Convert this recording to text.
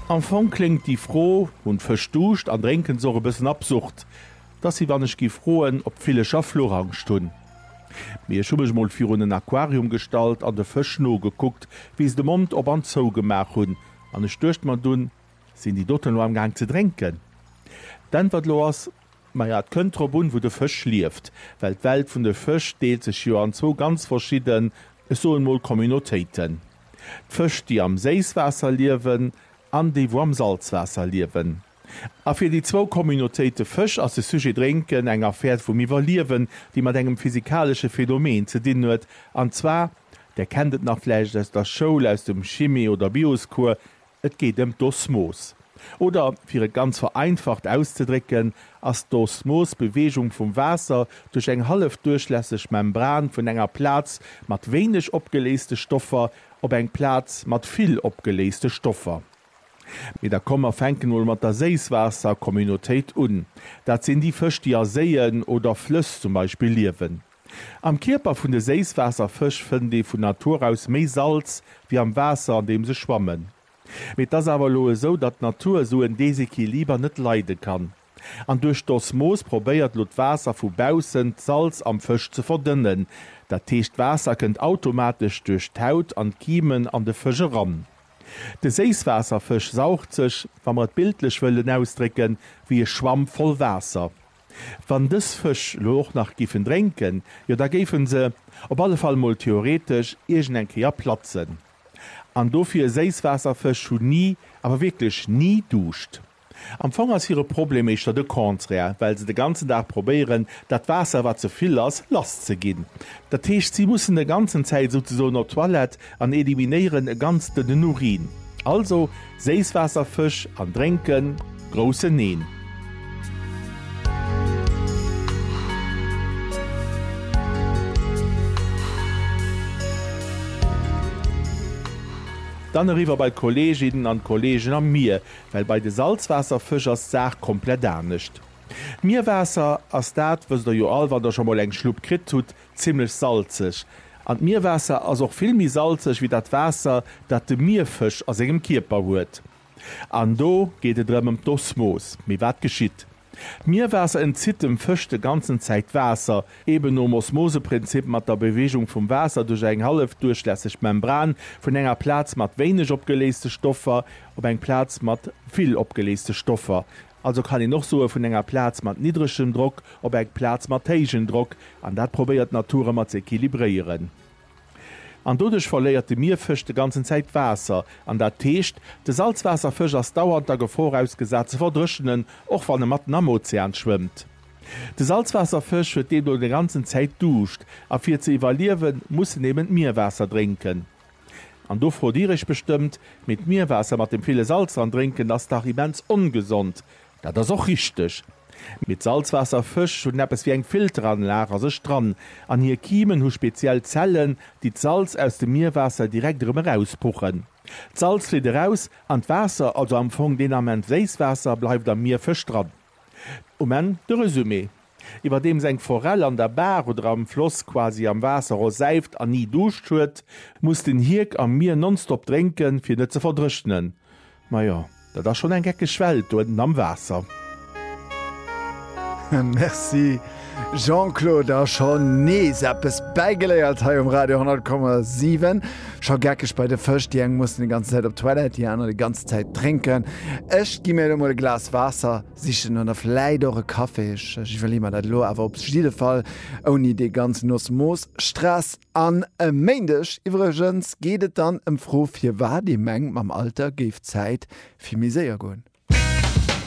Am Fong kléngt déi Fro, Hunn d'Fësch Duuscht an drénken se och? e bëssen absurd. Et ass wéi wann ech géif froen, ob d'Villecher Fluchangscht hunn. Mee ech hu mech mol virun en Aquarium gestallt an de Fësch nogekuckt, wéi se de Mond op an zou gemaach hunn, an ech duecht mer dunn, Sinn déi doten elo amgaang ze drénken? D'Äntwert elo ass, Maja, et kënnt drop un, wou de Fësch lieft, well d'Welt vun de Fësch deelt sech jo an zwou ganz verschidden, ech soen mol Communautéiten. D'Fësch, déi am Séisswaasser liewen an déi, wou am Salzwaasser liewen. A fir déi zwou Communautéite Fësch ass de Sujet Drénken eng Affär vum Iwwerliewen, déi mat engem physikalesche Phänomen ze dinn huet, an zwar, der kennt et nach vläicht aus der Schoul, aus dem Chimie oder Bioscours, Et geet ëm d'Osmos. Oder fir et ganz vereinfacht auszedrécken, ass d'Osmos d'Beweegung vum Waasser duerch eng hallefduerchlässeg Membran vun enger Plaz mat wéineg opgeléiste Stoffer op eng Plaz mat vill opgeléiste Stoffer. Mee da komm mer fänken emol mat der Séisswaasser-Communautéit un. Dat sinn déi Fësch, déi a Séien oder Flëss zum Beispill liewen. Am Kierper vun de Séisswaasserfësch fënnt ee vun Natur aus méi Salz wéi am Waasser an deem se schwammen. Mee et ass awer elo esou, datt d'Natur esou en Desequiliber net leide kann. An duerch d'Osmos probéiert elo d'Waasser vu baussen d'Salz am Fësch ze verdënnen. Dat heescht d'Waasser kënnt automatesch duerch d'Haut an d'Kiemen an de Fësch eran. De Séisswaasserfësch saugt sech, wa mer et bildlech wëllen ausdrécken, wéi e Schwamm voll Waasser. Wann dës Fësch elo och nach géifen drénken, jo da géife se, op alle Fall mol theoretesch, iergend eng Kéier platzen. An dofir, Séisswaasserfësch hunn ni, awer wierklech ni Duuscht. Am Fong ass hire Problem éischter de Contraire, well se de ganzen Dag probéieren, dat Waasser, wat ze vill ass, lasszeginn. Dat heescht, si mussen de ganzen Zäit souzesoen op d'Toilette, An eliminéieren e ganz dënnen Urin. Also Séisswaasserfësch an drénken, groussen Neen! Dann eriwwer bei d'Kolleeginnen an d'Kolleegen am Mier, well bei de Salzwaasserfësch ass d'Saach komplett anescht. D'Mierwaasser ass dat, wësst der jo all, wann der scho mol eng Schlupp kritt hutt, Zimmlech salzeg. An d'Mierwaasser ass och vill méi salzeg wéi dat Waasser, dat de Mierfësch a sengem Kierper huet. An do geet et erëm ëm d'Osmos. Mee wat geschitt? D'Mierwaasser entzitt dem Fësch de ganzen Zäit Waasser, eben nom Osmoseprinzip mat der Bewegung vum Waasser duerch eng hallefduerchlässeg Membran vun enger Plaz mat wéineg opgeléiste Stoffer op eng Plaz mat vill opgeléiste Stoffer. Also kann een och soe vun enger Plaz mat niddregem Drock op eng Plaz mat héijen Drock, an dat probéiert d'Natur ëmmer ze equilibréieren. An doduerch verléiert de Mierfësch de ganzen Zäit Waasser, an dat heescht, de Salzwaasserfësch ass dauernd der Gefor ausgesat ze verdréchenen, och wann e matten am Ozean schwëmmt. De Salzwaasserfësch huet deemno de ganzen Zäit Duuscht, a fir ze iwwerliewen, muss en eben d'Mierwaasser drénken. An do frot dir iech bestëmmt, mee d'Mierwaasser mat dem ville Salz dran drénken ass dach immens ongesond. Dat ass och richteg. Mee d'Salzwaasserfësch hunn eppes wéi eng Filteranlag a sech dran an hir Kimen hu speziell Zellen, déi d'Salz aus dem Mierwaasser direkt erëm erauspuchen. D'Salz flitt eraus an d'Waasser, also am Fong deen Ament Séisswaasser, bleift am Mierfësch dran. Um Enn de Resumé, Iwwerdeems eng Forell an der Baach oder am Floss quasi am Waasser rosäift an ni Duuscht huet, muss den Hierk am Mier nonstop drénken, fir net ze verdrëchnen. Majo, dat ass schonn eng geckeg Welt do ënten am Waasser. Merci! Jean-Claude, a scho nees eppes bäigeléiert hei um Radio 100,7. Scho geckeg bei de Fësch, déi eng mussen déi ganze Zäit op d'Toilette, déi aner déi ganze Zäit drénken. Ech gi mir elo mol e Glas Waasser sichen oder vläit och e Kaffi, ech iwwerleeë mer dat elo awer op jidde Fall ouni dee ganzen Osmos-Stress. An e Méindeg iwwregens geet et dann ëm d'Fro, firwat ee mengt, mam Alter géif d'Zäit vill méi séier goen.